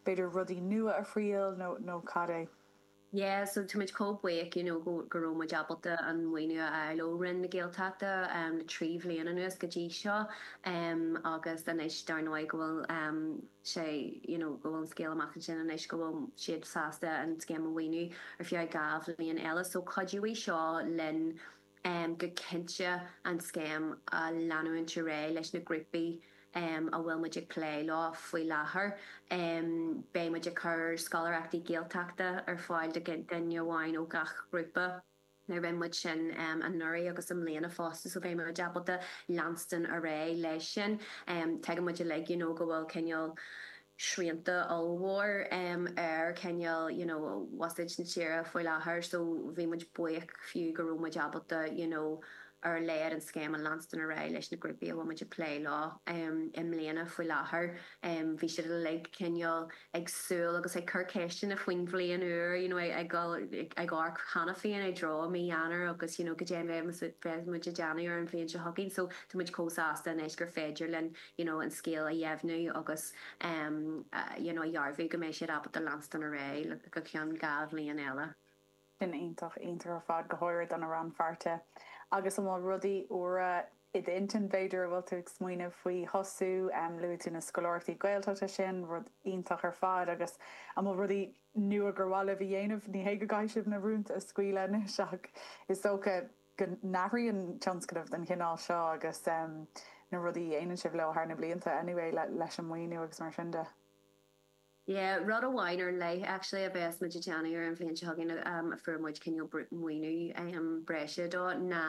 b'fhéidir rudaí nua a thriail nó nó cad é. Yeah so táimid chomh buíoch you know go go raibh muid ábalta an maoiniú a fháil ó Roinn na Gaeltachta um le trí bhliain anuas go dtí seo um agus anois dar ndóigh go bhfuil um sé you know go bhfuil an scéal amach ansin anois go bhfuil siad sásta an scéim a mhaoiniú ar feadh dhá bhliain eile so cuideoidh seo linn go cinnte an scéim a leanúint ar aghaidh leis na grúpaí a bhfuil muid ag plé leo faoi láthair. Beidh muid ag cur scoláireachtaí Gaeltachta ar fáil do dhuine amháin ó gach ghrúpa. Rinne muid sin anuraidh agus i mbliana fosta so beidh muid ábalta leanstan ar aghaidh leis sin. Tuigeann muid uilig you know go bhfuil cineál, srianta ollmhór ar cineál you know buiséad na tíre faoi láthair so bhí muid buíoch fiú go raibh muid ábalta you know ar a laghad an scéim a leanstan ar aghaidh leis na grúpaí a bhfuil muid ag plé leo i mbliana faoi láthair bhí siad uilig cineál ag súil agus ag cur ceisteanna faoin bhliain úr you know ag ag dul ag ag amharc cheana féin i dtreo mí Eanáir agus you know goidé a bheidh muid ag déanamh ar an bhliain seo chugainn so tá muid chomh sásta anois gur féidir linn you know an scéal a dheimhniú agus you know a dhearbhú go mbeidh siad ábalta leanstan ar aghaidh go ceann dhá bhliain eile. Sin iontach iontach ar fad, go háirid do na rannpháirtithe. Agus an bhfuil rudaí úra i d'intinn b'fhéidir a bhfuil tú ag smaoineamh faoi thosú? Luaigh tú na scoláireachtaí Gaeltachta, sin rud iontach ar fad agus an bhfuil rudaí nua gur mhaith libh a dhéanamh? Ní hé go gcaithfidh sibh na rúnta a scaoileadh anois ach is dócha. go n-athraíonn tionscnaimh den chineál seo agus na rudaí a dhéanann sibh leo thar na blianta anyway leis an maoiniú agus mar sin de. Yeah, rud amháin ar leith actually a bheas muid ag déanamh ar an bhliain seo chugainn a fuair muid cineál maoiniú breise dó ná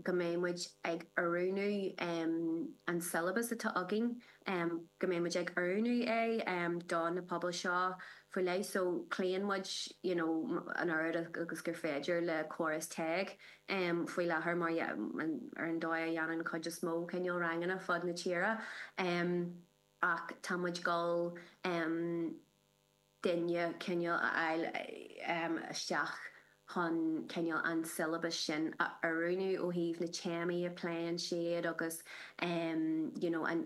go mbeidh muid ag oiriúnú an syllabus atá againn em, go mbeidh muid ag oiriúnú é, em, do na pobail seo faoi leith so cloíonn muid, you know, an oiread agus gur féidir le córas teg, em, faoi láthair mar ar an dóigh a dhéanann cuid is mó cineál ranganna fud na tíre, em, ach tá muid ag dul, em, duine cineál a fháil isteach chun cineál an siollabas sin a oiriúnú ó thaobh na téamaí a phléann siad agus you know an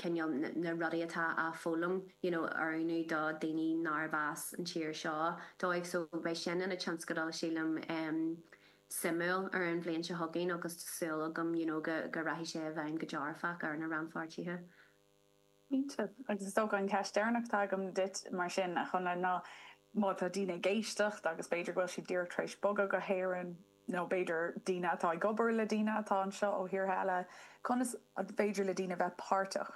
cineál na rudaí atá á foghlaim you know a oiriúnú do dhaoine nárbh as an tír seo dóibh so beidh sin ina tionscadal sílim suimiúil ar an bhliain seo chugainn agus tá súil agam you know go rachaidh sé i bhfeidhm go dearfach ar na rannpháirtithe. Cinnte, agus is dócha an ceist deireanach atá agam duit mar sin, a Chonnla, ná má tá daoine ag éisteacht agus b'fhéidir go bhfuil siad díreach tar éis bogadh go hÉirinn, nó b'fhéidir daoine atá ag obair le daoine atá anseo ó thíortha eile, conas féidir le daoine bheith páirteach?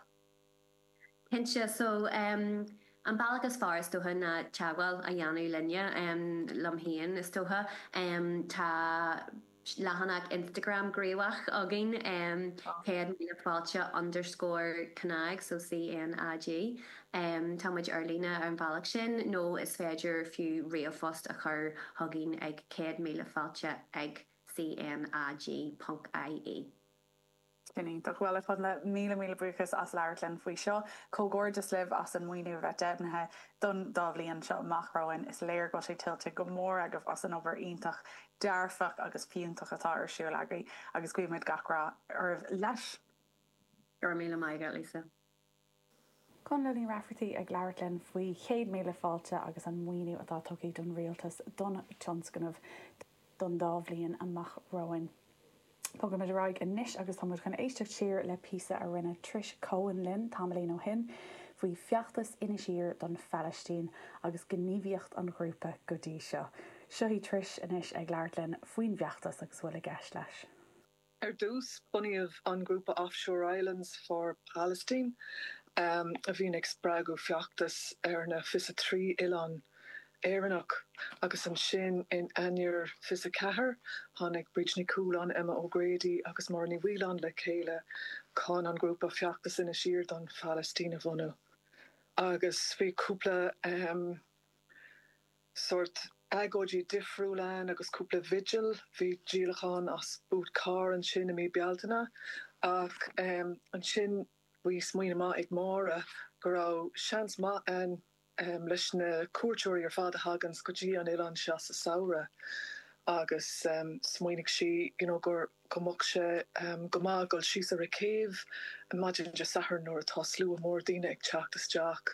Cinnte, so an bealach is fearr is dócha ná teagmháil a dhéanamh linne, liom féin is dócha. Tá. leathanach Instagram gníomhach againn, céad míle fáilte underscore cnag, so CNAG. Tá muid ar líne ar an bhealach sin nó is féidir fiú ríomhphost a chur chugainn ag céad míle fáilte ag CNAG ponc ie. Sin iontach. Bhuel, ar fad na míle míle buíochas as labhairt linn faoi seo. Comhghairdeas libh as an maoiniú a bheith deimhnithe don dá bhliain seo amach romhainn. Is léir go bhfuil sé tuillte go mór agaibh as an obair iontach, dearfach agus fiúntach atá ar siúl agaibh agus guímid gach rath oraibh leis. Go raibh míle maith agat, Lisa. Connla Ní Raifeartaigh ag labhairt linn faoi Chéad Míle Fáilte agus an maoiniú atá tugtha ón Rialtas don tionscnamh don dá bhliain amach romhainn. Bogfaimid ar aghaidh anois agus tá muid chun éisteacht siar le píosa a rinne Trish Cohen linn tamaillín ó shin faoi feachtas Inis Oírr don Phalaistín agus gníomhaíocht an ghrúpa go dtí seo. Seo í Trish anois ag labhairt linn faoin bhfeachtas agus a bhfuil i gceist leis. Ar dtús, bunaíodh an grúpa Offshore Islands for Palestine, a bhíonn ag spreagadh feachtas ar na fiche a trí oileán Éireannach, agus ansin, in Eanáir fiche a ceathair, tháinig Bríd Ní Chualáin, Emma O'Grady agus Máire Ní Mhaoileáin le chéile chun an grúpa feachtas Inis Oírr don Phalaistín a bhunú, agus bhí cúpla. sórt agóidí difriúil ann agus cúpla vigil, bhí díolachán as Boot Car ansin i mí Bealtaine ach ansin bhí smaoineamh maith ag Máire go raibh seans maith ann leis na cuairteoirí ar fad a thaganns go dtí an oileán seo sa samhradh agus smaoinigh sí you know gur go mbeadh sé go maith dul síos ar an gcéibh maidin Dé Sathairn nuair atá slua mór daoine ag teacht isteach